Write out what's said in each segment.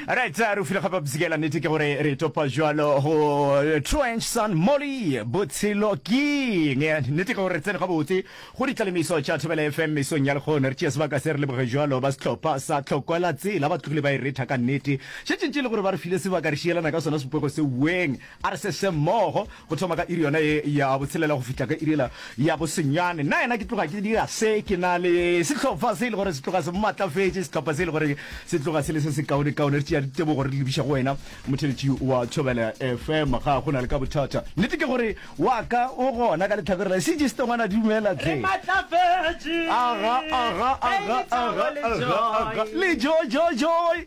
Right, re o file gape bzikela nete ke gore re topa jwalo go Trench Sun Molly botshelo king nete ke gore re tsene gabotse go ditlalemiso tša Thobela FM mesong ya lekgono re tšea sebaka se re leboge jwalo ba setlhopha sa tlhokwela tsela ba tlogile ba e retha ka nete šetšentše le gore ba re file sebaka re šielana ka sona sepoko se ueng A re se se mmogo, go thoma ka iri yona ye ya botshelela go fihla ka iri yela ya bosenyane. Nna yena ke tloga ke dira se ke na le sehlopha se e le gore se tloga se mmatlafetše, sehlopha se e le gore se tloga se le se sekaonekaone. Re tšea ditebogo re di lebiša go wena, motheletši wa Thobela FM. Ga go na le ka bothata. Nnete ke gore wa ka o gona ka lehlakore la. Sejiste ngwana dumela hle. Re matlafetše. Aga, aga, aga, aga, aga, aga. Le jo, jo, joi.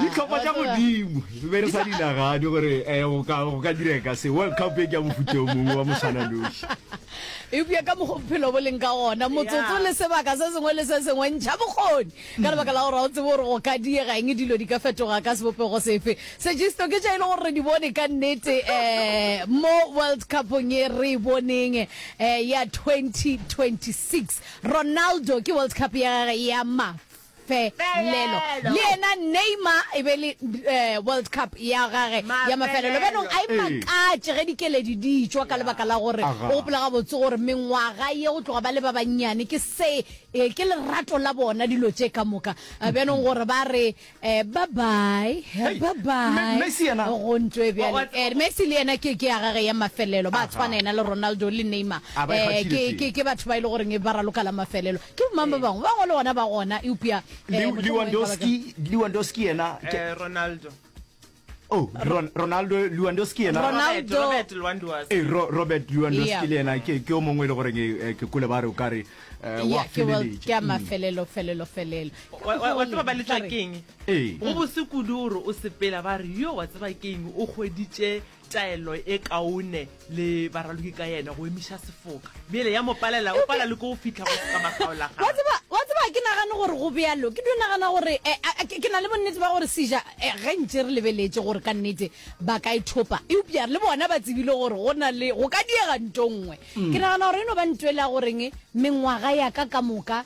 ditlhopha tša godimo be re sa di nagane gore eh, go ka direka se world cup e ke ya mofuta o mongwe wa moswananoši eupša ka mokgwa bophelo bo leng ka gona motsotso le sebaka se sengwe le se sengwe ntšha bokgoni ka lebaka la gore ga o tsebe gore go ka diega eng dilo di ka fetoga ka sebopego sefe segisto ke tša e le gore re di bone ka nnete um mo world cupong e re e boneng um ya 2026 ronaldo ke world cup ya gage ya mafelelo le yena neymar e be le um world cup ya gage ya mafelelo bjanong a e Ee. makatše ge dikeledi di tšwa ka lebaka la gore Aga. o gopola gabotse gore mengwaga ye go tloga ba le ba bannyane ke se Ee, ke lerato la bona dilo tše ka moka. Eh, Bjanong gore ba re eh, bye bye, Hey, bye bye. Me- Messi yena? Go ntwe Wa- bjale. wa- Eh, Messi le yena ke ke ya gage ya mafelelo. Ba Aha. tshwana yena le Ronaldo le Neymar. A ba e Eh, kgathile ke tše. ke ke batho ba ile gore nge ba raloka la mafelelo. Ke mang ba bangwe? Ba bangwe le gona ba gona. Eupša eh, Lew- mohlomongwe ba baka- Lewandowski Lewandowski yena ke- Eh, ronaldo Oh, Ron Ronaldo Lewandowski yena. Ronaldo Robert Lewandowski. Eh, Ro Robert Lewandowski yeah. le yena ke ke o mongwe le gore eh, ke kule ba re o ka re eh, wa feleletša. Ke a mafelelo mm. felelo felelo. Wa tseba ba letla keng? Eh. Go bose kudu o re o sepela ba re yo wa tseba keng o kgweditše taelo e kaone. le baraloki ka yena go emiša sefoka bjele ya mo palela o pala le ko o fitlha go ka makgaolagao wa tseba wa tseba ke nagane gore go bjalo ke dio nagana gore eh, a- a- ke ke na le bonnete ba gore seja eh, ge ntše re lebeletše gore ka nnete ba ka e thopa eupša le bona ba tsebile gore go na le go ka diega nto nngwe ke nagana gore e no ba nto e le ya goreng mengwaga ya ka ka moka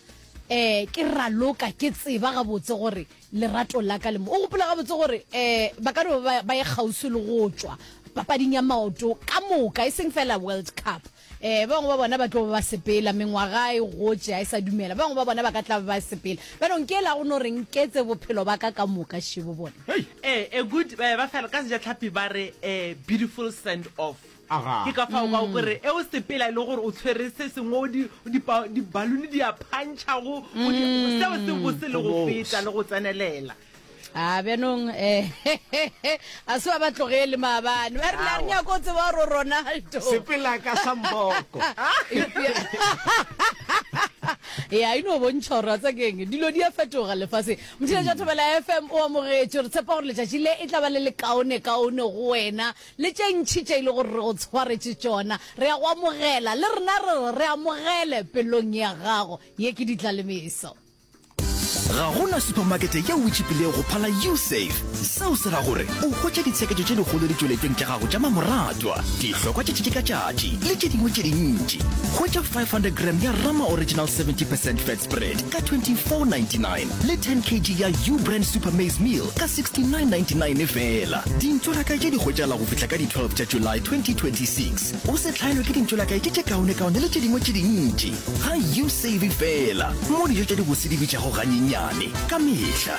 um ke raloka ke tseba gabotse gore Lerato la ka le mo. O gopola gabotse gore eh ba ka no ba ba ye kgauswi le go tšwa papading ya maoto ka moka, e seng fela World Cup. Eh ba bangwe ba bona ba tlo ba ba sepela, mengwaga e gotše ga e sa dumela. Ba bangwe ba bona ba ka tla ba ba sepela. Bjanong ke ela go no re nketse bophelo ba ka ka moka šebo bona. Hey! Eh, a good, eh ba fela ka Sejatlhapi ba re eh beautiful send off. Ke ka fao ka go re e o sepela e le gore o tshwere se sengwe o di dibaluni di a phantšha go seo se bose le go feta le go tsenelela a bjanong um a se ba ba tlogele maabane ba rile a re nyako o tseba gore ronaldo sepela ka samboko ya ino bontšha gore ratsa keng dilo di a fetoga lefase motšhile ja thobela fm o amogetše re tshepa gore letšatši le e tla ba le lekaone kaone go wena Le tše ntši tše e lego gore re go tshwaretše tšona, re a go amogela. Le rena re re, Re amogele pelong ya gago. Ye ke ditlalemeso. Ga go na supamakete yeo e tšhipilego go phala U-Save. Seo se ra gore o hwetša ditsheketšo tše dikgolo ditšweletšong tša gago tša mamoratwa, dihlokwa tša tšatši ka tšatši le tše dingwe tše dintši. Hwetša 500 gram ya Rama Original 70 percent Fat Spread ka 24.99. le 10 kg ya ubrand super maize meal ka 69.99 e fela dintšo la kae tše di hwetšala go fihla ka di-12 tša july 2026 o se tlhaelwe ke dintšo la kae tše tše kaonekaone le tše dingwe tše dintši ga you save fela mo dijo tša dibose di bitšago ganyenyane ka mehla